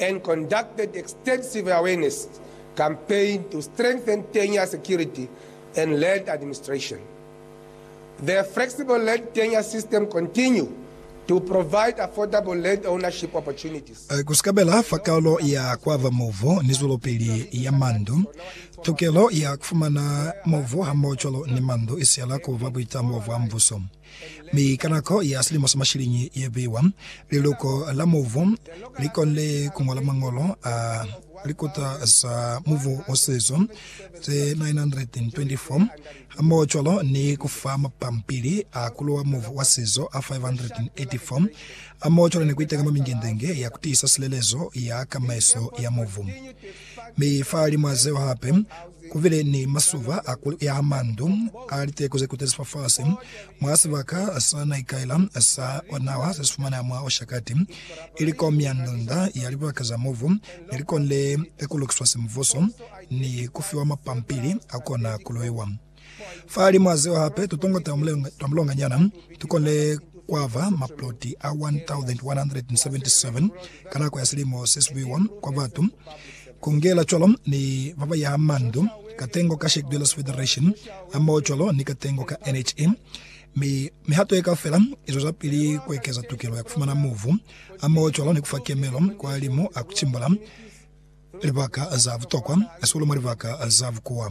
and conducted extensive awareness campaign to strengthen tenure security and land administration. The flexible land tenure system continue to provide affordable land ownership opportunities. Ku sikabela fa kalo ya kuaba movu ni zwelopili ya mandu, tokelo ya kufumana movu hamoho cwalo ni mandu isiyela kuba buitamo bwa mbuso. Mi ka nako ya silimo sa mashiliñi ye biwa, liluko la mubu li konile ku ñola mañolo a likuta za mubu wa sizo ze 924, hamohocwalo ni ku fa mapampili a ku luwa mubu wa sizo a 584, hamohocwalo ni ku itenga mwa mingendenge ya ku tiisa silelezo ya kamaiso ya mubu. Mi fa limwa zeo hape kubile ni masuba a ku yaha mandu a liteko ze kutezi fafasi mwa sibaka sa na ikaela sa nawa se si fumaneha mwa Oshakati, ili ko mia ndunda ya libaka za mobu ne li konile ku lukiswa semvuso ni ku fiwa mapampili a kona ku loiwa. Fa limo a zeo hape, tutongo twa mulonga, twa mulonganyana tu konile kwa ba maploti a 1,177 ka nako ya silimo se sibuiwa kwa batu, ku ngela cwalo ni ba ba yaha mandu, katengo ka Shack Dwellers Federation hamoho cwalo ni katengo ka NHE. Mi mihato ye kaufela i zwezapili ku ekeza tukelo ya ku fumana mubu hamoho cwalo ni ku fa kemelo kwa limo a ku cimbula. Libaka za butokwa hahulu mwa libaka za bukuwa.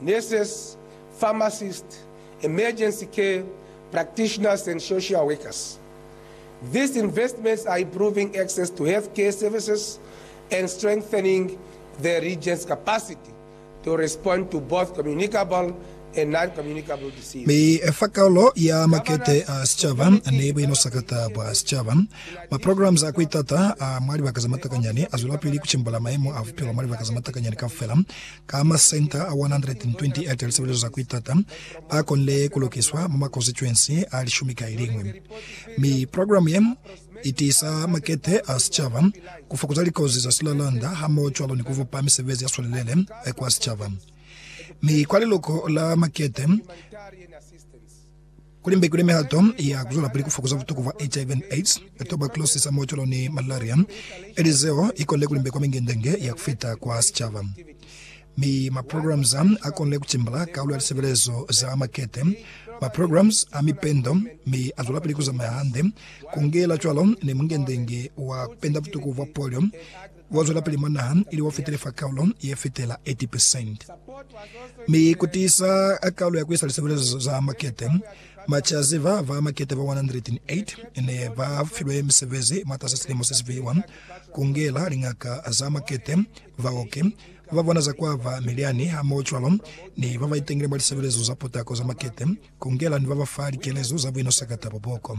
nurses, pharmacists, emergency care practitioners and social workers. These investments are improving access to health care services and strengthening the region's capacity to respond to both communicable and non-communicable disease. Mi fa kaulo ya makete a sicaba ni buinusakata bwa sicaba, maprograms a kuitata a mwa libaka ze matakanyani azwelapili kucimbula maemo a bupilo mwa libaka ze matakanyani kaufela. Ka masenta a 128 a lisebelezo za ku itata a konile ku lukiswa mwa makonstituensi a lishumi ka iliñwi, mi programe ye i tiisa makete a sicaba, ku fokuza likozi za silalanda hamohocwalo ni ku bupa misebezi ya swelelele kwa sicaba mi kwa liluko la makete. Kuli mbe kuli mihato ya kuzwelapili kufokoza butuku bwa HIV and AIDS, tuberculosis ha moocolo ni malaria ili zeo ikonile kuli mbe kwa mingendenge ya kufita kwa sicaba. Mi maprograms a akonile kutimbala kaulu ya lisebelezo za makete, maprograms a mipendo, mi azwelapili kuzamaya hande, kungela cwalo ni mungendenge wa kupenda butuku bwa polio, wa zwelapili mwa naha ili wa fitile fa kaulo ye fitela 80 percent, mi ku tiisa kaulo ya ku isa lisebelezo za makete. Macazi ba ba makete ba 108 ne ba filwe misebezi mwatasa silimo se si fiwa, ku ngela liñaka za makete, baoki, ba ba bona za kwa ba milyani hamohocwalo ni ba ba itengile mwa lisebelezo za potako za makete, ku ngela ni ba ba fa likelezo za buino sakata bwa boko.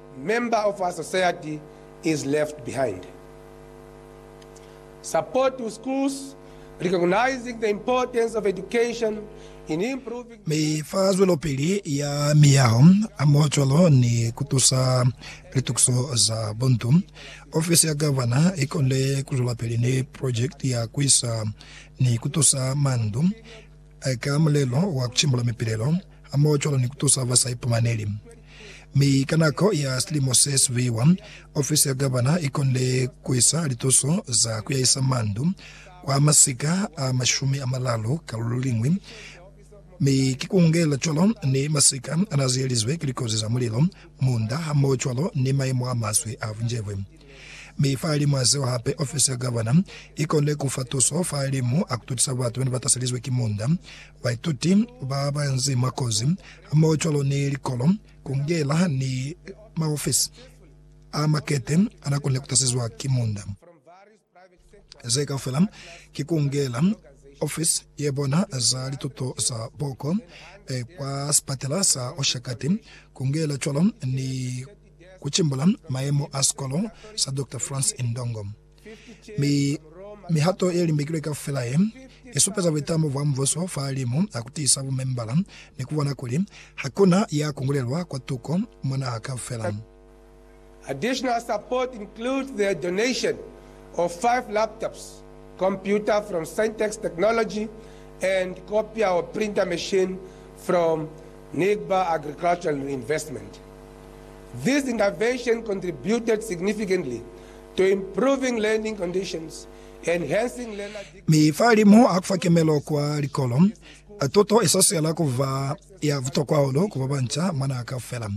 Member of a society is left behind. Support to schools, recognizing the importance of education in improving. Mi fa zwelopili ya miyaho a mwa cwalo ni ku tusa litukiso za buntu, ofisi ya Gavana i konile ku zwelapili ni project ya ku isa ni ku tusa mandu ka mulelo wa kucimbula mipilelo hamoho cwalo ni kutusa ba sa ipumaneli. Mi ka nako ya silimo se siviwa, ofisi ya gavana ikonile kuisa lituso za kuyahisa mandu kwa masika a mashumi amalalu ka lululiñwi, mi ki kuungelela cwalo ni masika anaziyelizwe ki likozi za mulilo, munda, hamoho cwalo ni maimo amaswe a bunjebwe. Mi fahalimw'a zeo hape, ofisi ya gavana i konile ku fa tuso fahalimu a ku tutisa batu ba ne ba taselizwe ki munda, baituti ba ba nzi mwa kozi, hamohocwalo ni likolo, kungela ni maofisi a makete a n'a konile ku tasezwa ki munda. Ze kaufela ki kungela ofisi ye bona za lituto za boko kwa sipatela sa Oshakati, kungela cwalo ni ku cimbula mayemo a sikolo sa Doctor Frans Indongo. Mi mihato ye limbekilwe kaufela ye, i supeza buitamo bwa Mubuso fa limu a ku tiisa bumembala ni ku bona kuli ha ku na ya kungulelwa kwa tuko mwa naha kaufela. Additional support includes the donation of five laptops, computer from Syntex Technology and copier or printer machine from Nigba Agricultural Reinvestment, This intervention contributed significantly to improving learning conditions, enhancing learner dignity, Mi fa limu a kufa kemelo kwa likolo, tuto isoswela kuba ya butokwa hahulu ku babanca mwa naha kaufela.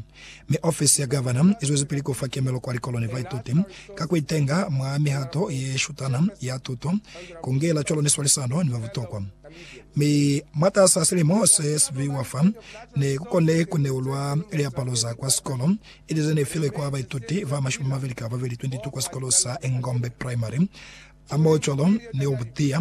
Mi ofisi ya Gavana izwezipili kufa kemelo kwa likolo ni baituti ka kuitenga mwa mihato yeshutana ya tuto, kungela cwalo ni swalisano ni babutokwa. Mi mwatas'a silimo se sibi wa fa, ne ku kone ku neulwa liapalo za kwa sikolo, ili ze ne filwe kwa baituti ba mashumi mabeli ka babeli, 22, kwa sikolo sa Engombe Primary. A mo cwalo ni o butiya.